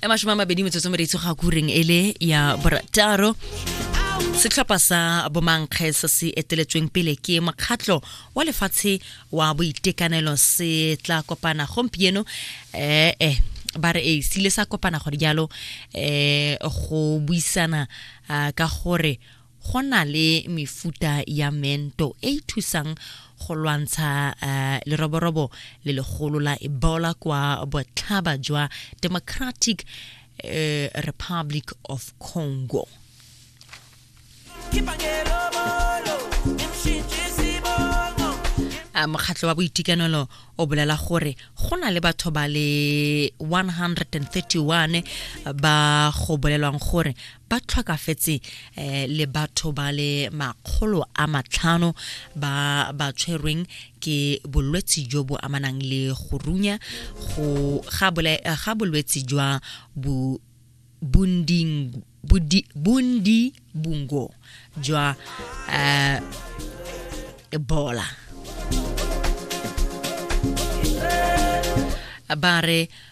e mashome a mabedi metsotso mereitso ga kureng e le ya borataro setlhopha sa bomankge se se eteletsweng pele ke mokgatlho wa lefatshe wa boitekanelo se tla kopana gompieno eh, eh ba re e sile sa kopana gore jalo eh go buisana ah, ka gore go na le mefuta ya mento e e thusang go lwantsha uh, leroborobo le legolo la ebola kwa botlhaba jwa democratic uh, republic of congo Eh, mokgatlho wa boitekanelo o bolela gore go na le batho ba le 131 ba go bolelwang gore ba tlhokafetse eh, le batho ba le makgolo a matlhano ba ba tshwerweng ke bolwetsi jo bo amanang le go runya go ga bole- eh, ga bolwetsi jwa bu bunding budi bundi bungo jwa eh, ebola ba re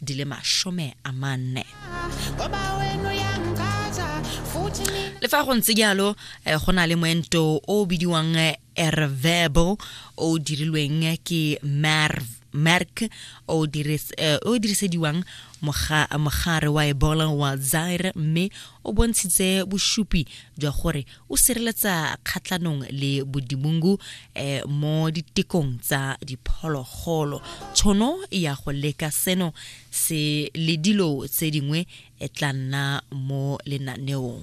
di le masome a manne le fa go ntse jalo eh, go na le moento o o bidiwang eh, ervebo o dirilweng eh, ke merk o dirisediwang mogare wa ebola wa zaire mme o bontshitse bosupi jwa gore o sireletsa kgatlhanong le bodimungu eh, mo ditekong tsa diphologolo tshono ya go leka seno se le dilo tse dingwe e tla nna mo lenaneong